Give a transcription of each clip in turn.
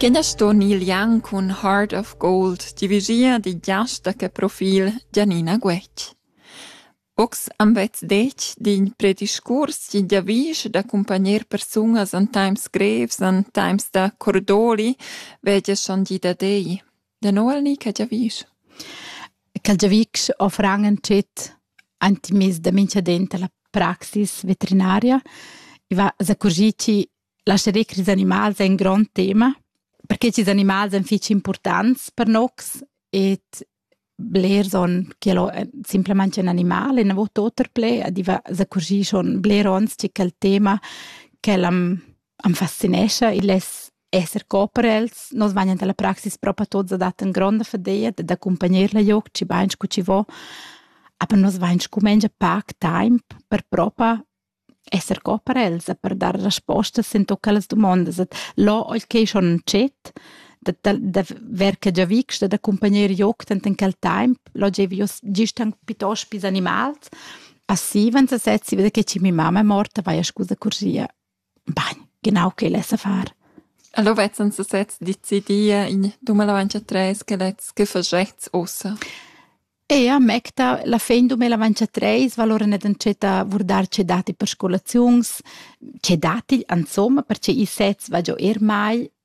Quenda ston il Jan cun Heart of Gold divigia di giasta che profil Gianina Guetg. Ox am vezz detg d'in prediscurs chi giavisch da cumpagner persunas an times grevs, an times da cordoli, vegia schon di da dei. Da nou al ni che giavisch? Ch'el giavisch offran ün tschet antimis da mincha dent a la praxis vetrinaria. I va s'accurgir chi lascheré ch'ils animals ein grond tema, perche ch'ils animals ein fich importants per nocs ed blers on ch'el ho simplamaing ün animal e na vo tuot per pled, adiva s'accurgir schon bler ons chi quel tema ch'el am am fascinescha il es esser cooper els. Nos vegnan dalla praxis propa tuots ad at in gronda fadeia d'accumpagner la joc, chi bain scu chi vo, aber nos vain scumengia pac taimp per propa esser cooper els e per dar respostas in tuot quellas dumondas. Et là oil ch'ei schon in dschet, da, da, da ver che già vics da accumpagner joc tant in quel temp, là gievi io gist anche piuttosto pis animals. Passiven se sezzi da che ci mia mamma è morta, vai a scusa cursia. Bagn, genau quel es a far. Allo vezzan se sezs decidia in dumel avancha tres che lets che faschets ussa. Ea, mecta, la fin dumel avancha treis valora net antschetta vurdar che dati per scolaziuns, che dati, insomma, perche i sez va giò er mal,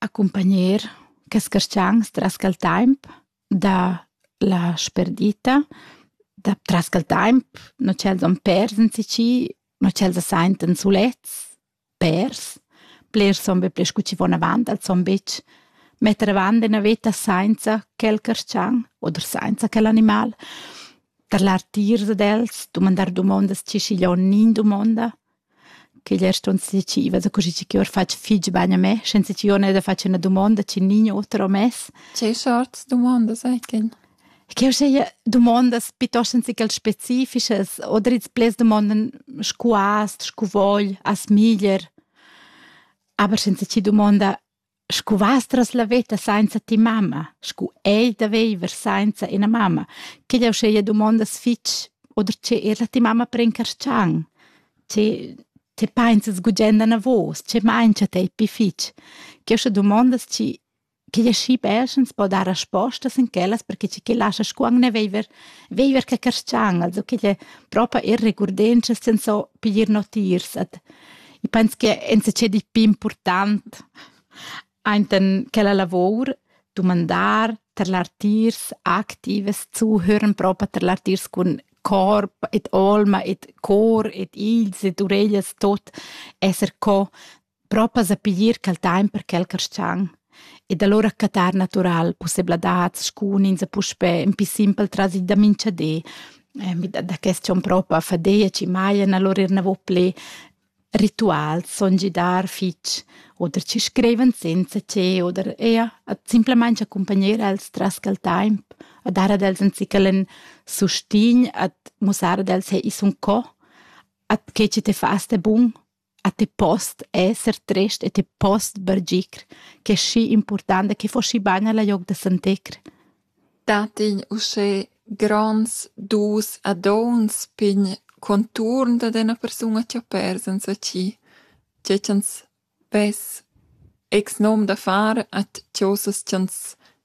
accumpagner quels carstgans tras quel temp da la sperdita da tras quel temp no ch'els han pers in ci no ch'els se senten sulets pers blers son be pli scu chi von avant els son bitg metter avant ina veta sainza quel carstgan oder sainza quel animal tarlar tiers ad els dumandar dumondas chi schiglio'n nin dumonda che glier ston decida da così chi or fatg fich bagn a me, senza chi ò ne da fatg üna dumonda chi nign oter ho mess. Che sorts dumondas ecen? Che ho seia dumondas piuttost anzichel specifichas oder its pleds dumondan scu hast, scu vogl, as miglier, aber senza chi dumonda scu vastras la veta sainza ti mamma, scu ei da veiver sainza ina mamma, che jau scheia dumondas fitg, oder che er la ti mamma prencarschang, che te painzas gugenda na vos, che maincha tei pi fitg, che ho sche dumondas chi che ja schi perschens po dar respostas in quellas, perché chi che lascha scuang ne veiver, veiver che carschang, also che lle propa er regurdenschas sen so piglier notiers ad Ich penso che enzatgé di più important ainten quella lavor dumandar tar l'artiers activas zuhören propa tar l'artiers cun corp et alma et cor et ils et ureglias tot esser co propa sa piglier quel time per quel carschang ed allura cattar natural pussebladads scunins e puspè ün pi simpel trasi da minchadi. Da quest sion propa fadia chi majan allura eir navo plü rituals, son gidar fich oder chi scrivan senza che oder eir simplamaing accumpagnar els tras quel taimp, a dar ad els ün zichel ün sustign, a mussar ad els: «Hey, i sun co, at che chi te fast è bun?» A ti post esser trist e ti post bargir ch'è schi impurtanta che fo schi bain al aug da Sant'Ecr? Dat igl uschè gronds dus a dons pign conturn dad ena persuna chi ha pers enzatgi, tge ch'ans vess ex nom da far at chosas ch'ans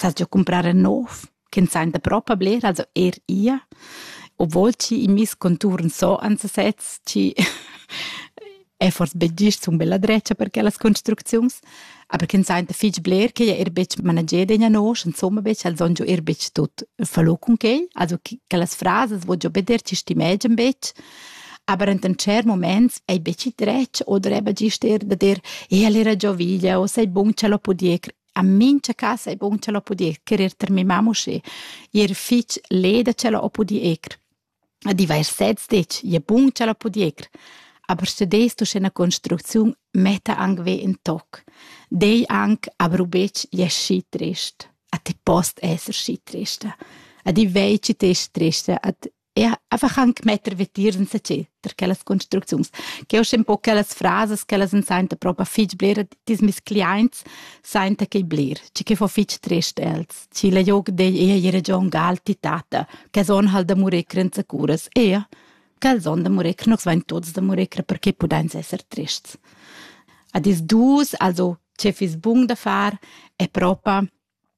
sast jeu cumprar en nov ch'ins ein da propa bler also er ia obwohl chi in mis conturn so ans sez chi è forse be gist un bella dretga per quellas construcziuns aber ch'ins ein da fich bler che er betg manager degna nosch insomma betg al son er betg tut fallo cun quel also quellas frases wo jo beder ci stimegen betg aber in cer moments ei betg dretg oder eben gist er da der e allora gioviglia o sei bun ce lo podier a mincha casa è bun ch'ella ho pudì echerer ter mia mamma uschè. I era fich leda ch'ella ho pudì echer. A divers sezs detg, ie bun ch'ella ho pudì echer. Aber studest uschè üna construcziun metta anc ve in toc. Dei anc, aber ubetg ie schi trist. A ti post esser schi trista. A di vei ci te trista, a e einfach anche metter vitier in se perché las construcziuns che ho un po' quellas frases che las senta proprio fich bler dis mis clients senta che bler ci che fo fich trist els ci le joc de ei region gal titata che son halt da murecre in securas e che son da murecre nos vain tots da murecre perché pudeins esser trists a dis dus also ce fis bun da far è proprio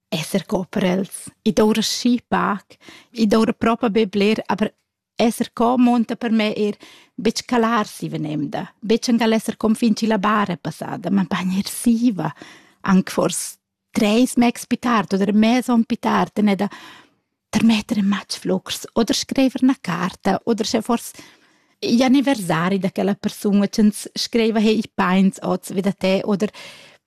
esser co per els. I doura schi pac, i doura propa be bler, aber esser co monta per me eir betg calar si venemda, betg angal esser con fin chi la bar è passada, ma bagn er siva, anc fors treis megs pi tard oder e mez on pi tard, en da termetter in matg flux oder screiver na carta oder sche fors gli anniversari da quella persun, ch'ins screiva hey, i pains oz vi da te oder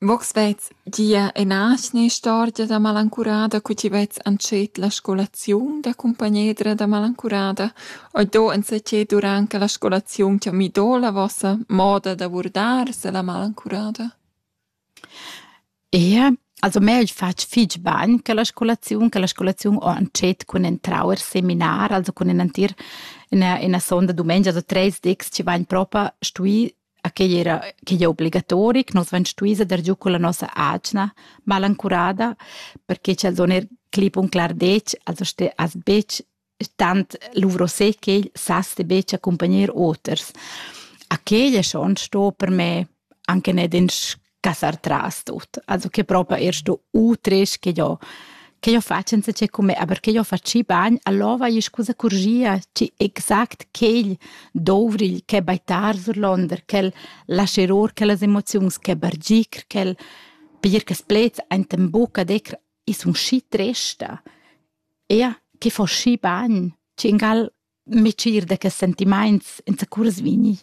Vogs vets gia ena atgna istorgia da malancurada cu ti vets antschet la scolaziun da cumpagnedra da malancurada. Oi do enzatgei durant che la scolaziun ti ha midò la vossa moda da vurdar se la malancurada? Ie, also meu ais fatg fich bagn che la scolaziun, che la scolaziun ho antschet cun entrau er seminar, also cun ün entir üna üna sonda dumengia, so tres dis chi vain propa stui a quei era quei era obligatoric, nus vein stui dar giu con la nossa atgna malancurada, perché ch'els on er clip un clar detg, also ste as betg tant luvrosé ch'el sas de betg accompagner oters. A quei è schon sto per me anche net in cassar tras tut. Also che proprio erst du utres che io che io faccio senza c'è come, aber che io faccio bagn, allora è scusa corgia, ci exact quel dovril che baitar surlonder, quel lasceror, quelle emozioni che bargir, quel per che splets enten buca decr is un schi tresta. Ja, che fa schi bagn, ci ingal mitschir da quels sentimaints zacurs vegni.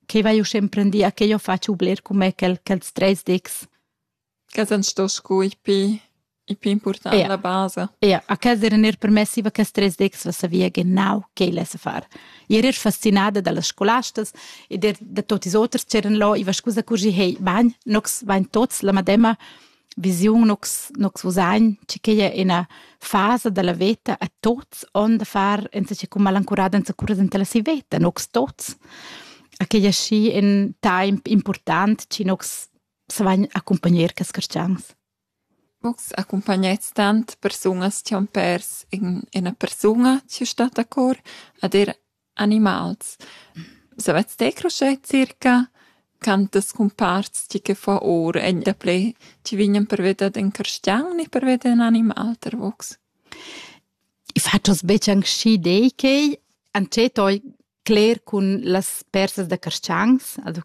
Che vai usch emprendì a che io faccio bler con me quel, quels treis dics. Che san sto scu i pi, i pi important ja. la base. Ja, a casa era er permessi va quels treis dics va savia genau che lesse far. Io ero fascinada dalle scolastas e der da tutti i oters c'eran là, i va scusa curgi, hey, bagn, nox bain tots la madema, visiun nus nus usagn che quei è ina fasa della veta a tots on da far enzache cum malancurada enzacura dentella si veta nux tots a quei è schi in temp important ci nux savagn accompagner che scarcians Nux accompagnet tant persunas che han pers in ina persuna che sta a cor ad er Animals. Savets te cruscher circa quantas cumparts tgi che fa ur egn daplè tgi vignan per veder d'en carstgaun e per veder in animal tar vos? I fatschas betg anc schi dei quei, antschet oi cler cun las persas da carstgangs, also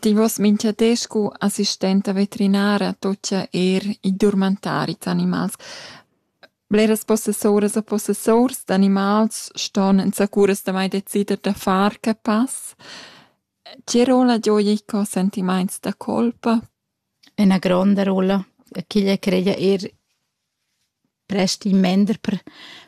Ti vos mincha di scu assistenta veterinara tuocha eir in durmantari d'animals. Bleras possessuras e possessurs d'animals ston insacuras damai decider da far que pass. Tge rolla gioja i cò sentimaints da colpa? Üna gronda rolla. Ch'igl creia eir prest in mender per